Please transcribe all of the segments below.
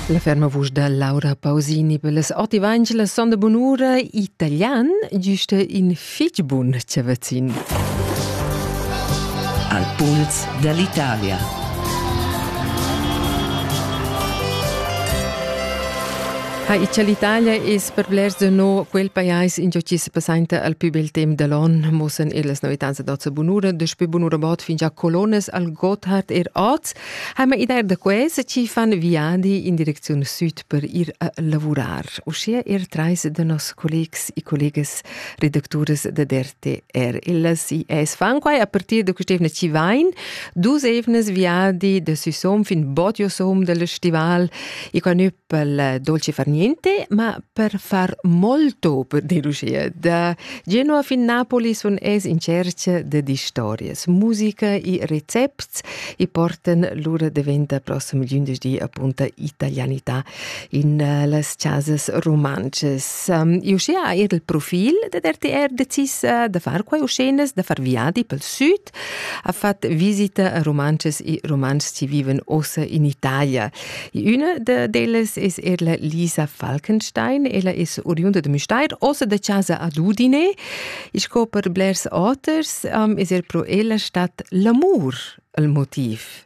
La ferma vusch da Laura Pausini per les oti vangelas son de bunura italian giusta in fitg bun chavazin. Al puls dall'Italia. Ha icha l'Italia es per blers de no quel pajais in qui se passainta al più bel temp dell'on mossen illas novitanza d'ozza bunura, de spe bunura bot fin già colones al Gotthard er oz, Heimer idea da questa ci fan viadi in direcziun sud per ir a lavurar. Uschia er trais da nos collegs e collegas redactures da DRTR. Ellas IS fan quai a partir da quest'evna ci vain dus evnas viadi da Süsom fin Bodiosom dal festival e quai pel dolce far niente, ma per far molto per delucir. Da Genova fin Napoli sun es in cerca de distorias. Musica e recepts e portan lura diventa prossimi gendarmi appunto italianità in eh, las casas romances. Um, ehm, uschea eir il profil de RTR decis eh, da far quai uscenas, da far viadi pel sud Art ha fat visita a romances e romans chi vivan ossa in Italia. Üna da delas es er la Lisa Falkenstein. Ella es oriunda de Müstair, ossa da casa ad Udine. I sco per blers auters um, es er pro ella stat l'amur il motiv.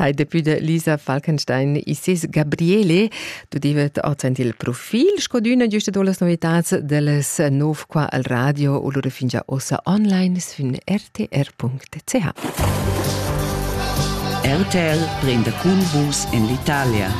Hai depui de Lisa Falkenstein Isis Gabriele, du divet ozend il profil scodüna giuste do las novitats deles nov qua al radio u lura fingia ossa online sün rtr.ch. RTL prende cun vus in l'Italia.